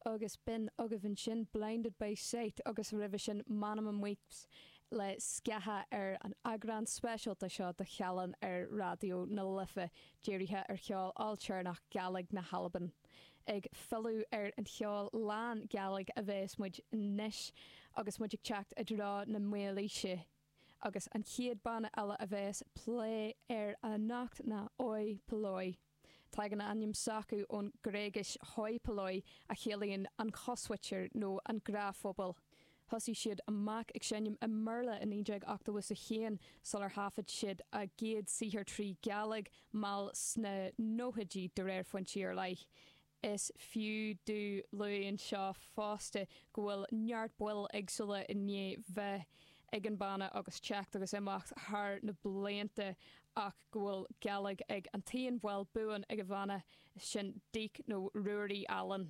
Agus b'in agaibh ansin Blinded by Sight agus roimhe sin Màmna Weeps le Sgàthach ar an eagrán speisialta seo de Chealan ar Raidió na Life dírithe ar cheol ailtéarnach Gaidhlig na hAlban. Ag filleadh ar an cheol lán-Ghaidhlig a bheas muid anois agus muid ag teacht i dtreo na Maoilíse. agus an chéad banna eile a bheas á phlé anocht ná Oi Polloi. Tagann a ainm s'acu ón Gréigis hoi polloi a chiallaíonn an chosmhuintir nó an gnáthphobal. Thosaigh siad amach ag seinm i mBéarla i 1981 sular thaifead siad a gcéad saothar trí Ghaidhlig mall sna nóchaidí, de réir foinsí ar leith. Is fiú a lua anseo fosta go bhfuil neart baill eagsúla i ndiaidh bheith ag an bhanna agus teacht agus imeacht thar na blianta ach go bhfuil Gaidhlig ag an t-aon bhall buan ag an bhanna, sin Deek nó Ruairí Allen.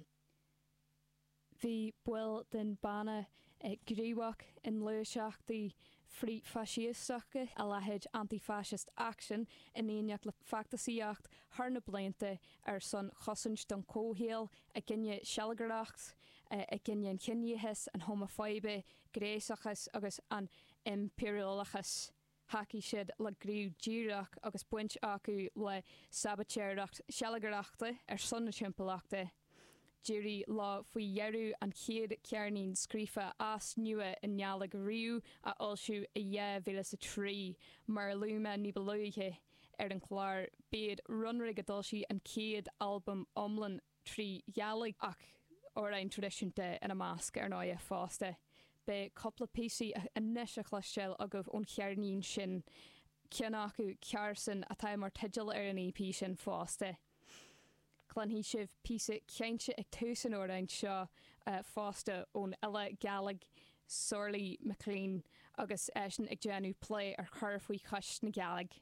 Bhí baill den bhanna gníomhach i ngluaiseachtaí frith-Fhaisísteacha, a leithéid Anti-Fascist Action, in éineacht le feachtasaíocht thar na blianta ar son chosaint don chomhshaol, i gcoinne sealgaireacht, i gcoinne an chiníochas, an homafóibe, gnéasachas agus an impiriúlachas. Thacaigh siad le gníomh díreach agus baint acu le sabaitéireacht shealgaireachta ar son na timpeallachta. D'éirigh leo faoi dheireadh an chéad cheirnín scríofa as nua i nGaidhlig riamh a fhoilsiú i 2003, mar a luaigh mé ní ba luaithe ar an chlár, b'iad Runrig a d'fhoilsigh an chéad albam iomlán. trí Ghaidhlig ach amhráin traidisiúnta ina measc, ar ndóigh, fosta. Beidh cúpla píosa anois le cloisteáil agaibh ón cheirnín sin, ceann acu, Carson, atá mar teideal ar an EP sin fosta. Cluinfidh sibh píosa cainte ag tús an amhráin seo fosta ón fhile Gàidhlig Sorley MacLean agus eisean ag déanamh plé ar chur faoi chois na Gàidhlig.